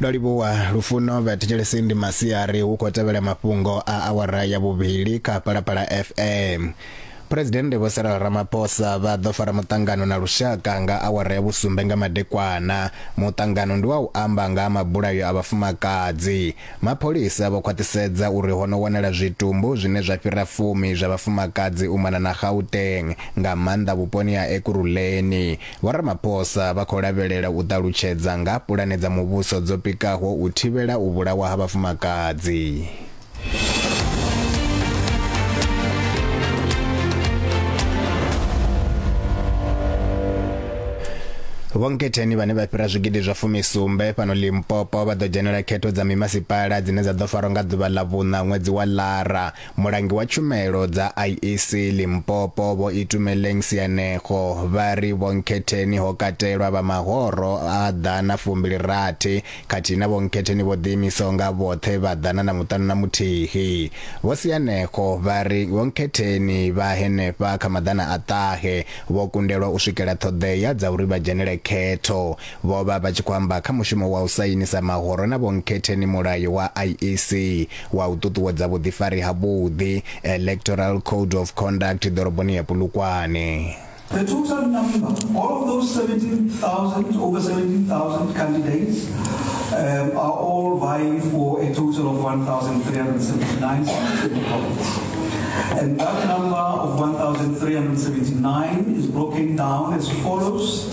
ndo livhuwa lufuno vhathetshelesi ndi masiari hu khou tevhela mafhungo a awara ya vhuvhili kha phalaphala fm phuresidennde vho sarala ramaphosa vha ḓo fara muṱangano na lushaka nga awara ya vhusumbe nga madekwana muṱangano ndi wa u amba nga ha mabulayo a vhafumakadzi mapholisa vho khwaṱhisedza uri ho no wanala zwitumbu zwine zwa fhira fumi zwa vhafumakadzi u mona na gauteng nga maanḓa vhuponi ha ekuruleni Vho Ramaphosa vha khou lavhelela u ṱalutshedza nga ha pulane dza muvhuso dzo pikaho u thivhela u vhulawa ha vhafumakadzi. vhonketheni vhane vha fhira zwigidi zwa fumisumbe fhano limpopo vha ḓo dzhenela khetho dza mimasipala dzine dza ḓo farwa nga ḓuvha ḽa vhuṋa ṅwedzi wa lara Mulangi wa tshumelo dza IEC Limpopo Vho Itumeleng Sianego vha ri vhonkhetheni ho katelwa vha mahoro a ḓana fumbili rathi khathihi na vhonkhetheni vho ḓiimisaho nga vhoṱhe vha ḓana na muṱanu na muthihi. Vho Sianego vha ri vhonkhetheni vha henefha kha maḓana a ṱahe vho kundelwa u swikela ṱhoḓea dza uri vha dzhenele khetho Vho vha vha tshi khou amba kha mushumo wa u sainisa mahoro na vhonkhethe ni mulayo wa IEC wa u ṱuṱuwedza vhuḓifari ha vhuḓi, Electoral Code of Conduct, ḓoroboni ya Polokwane. The total number of those 17,000, over 17,000 candidates um, are all vying for a total of 1,379 seats in the province. And that number of 1,379 is broken down as follows.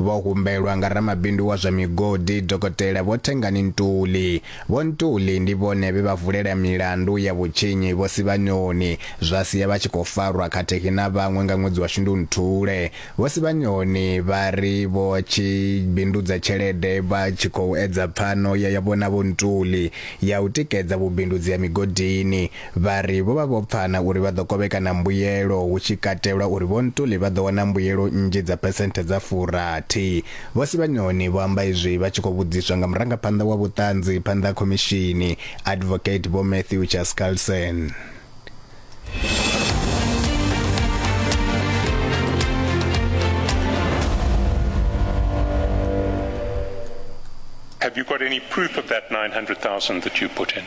Vho humbelwa nga ramabindu wa zwa migodi Dokotela Vho Thengani Ntuli. Vho Ntuli ndi vhone vhe vha vulela milandu ya vhutshinyi Vho Sibanyoni zwa sia vha tshi khou farwa khathihi na vhaṅwe nga ṅwedzi wa Shundunthule. Vho Sibanyoni vha ri vho tshi bindudza tshelede vha tshi khou edza pfano ya yavho na Vho Ntuli ya u tikedza vhubindudzi ha migodini. Vha ri vho vha vho pfana uri vha ḓo kovhekana mbuyelo, hu tshi katelwa uri Vho Ntuli vha ḓo wana mbuyelo nnzhi dza phesenthe dza furathi. Vho Sibanyoni vho amba izwi vha tshi khou vhudziswa nga murangaphanḓa wa vhuṱanzi phanḓa ha khomishini, Advocate Vho Matthew Chaskalson. Have you got any proof of that 900,000 that you put in?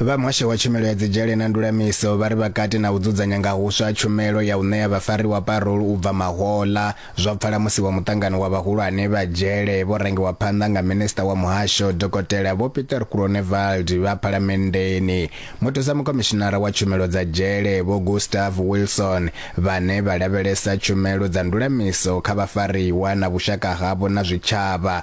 Vha muhasho wa tshumelo ya dzidzhele na ndulamiso vha ri vha kati na u dzudzanya nga huswa tshumelo ya u ṋea vhafariwa parole u bva mahoḽa. Zwo pfala musi wa muṱangano wa vhahulwane vha dzhele vho rangiwa phanḓa nga minisiṱa wa muhasho Dokotela Vho Pieter Groenewald vha phalamenndeni, muthusa mukhomishinara wa tshumelo dza dzhele Vho Gustav Wilson vhane vha lavhelesa tshumelo dza ndulamiso kha vhafariwa na vhushaka havho na zwitshavha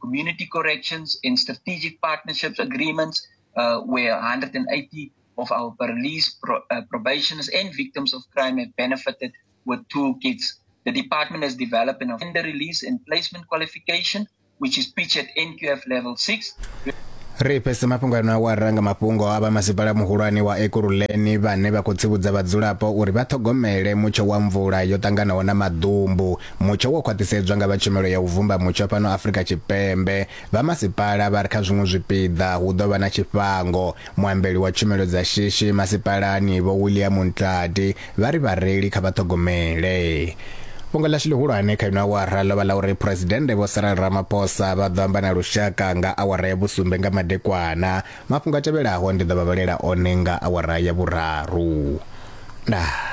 community corrections and strategic partnerships agreements, uh, where 180 of our police pro, uh, probationers and victims of crime have benefited with toolkits. The department has developed an offender release and placement qualification, which is pitched at NQF level 6. ri pese mafhungo ano a wa ranga mafhungo a vha masipala muhulwane wa ekuruleni vhane vha khou tsivhudza vhadzulapo uri vha ṱhogomele mutsho wa mvula yo ṱanganaho na maḓumbu Mutsho wo khwaṱhisedzwa nga vha Tshumelo ya u Vumba Mutsho fhano Afrika Tshipembe. Vha masipala vha ri kha zwiṅwe zwipiḓa hu ḓo vha na tshifhango. Muambeli wa tshumelo dza shishi masipalani Vho William Ntladi vha ri vhareili kha vha ṱhogomele. Fhungo ḽashu ḽihulwane kha ino awara ḽo vha ḽa uri Phresidennde Vho Cyril Ramaphosa vha ḓo amba na lushaka nga awara ya vhusumbe nga madekwana. Mafhungo a tevhelaho ndi ḓo vha vhalela one nga awara ya vhuraru. Ndaa.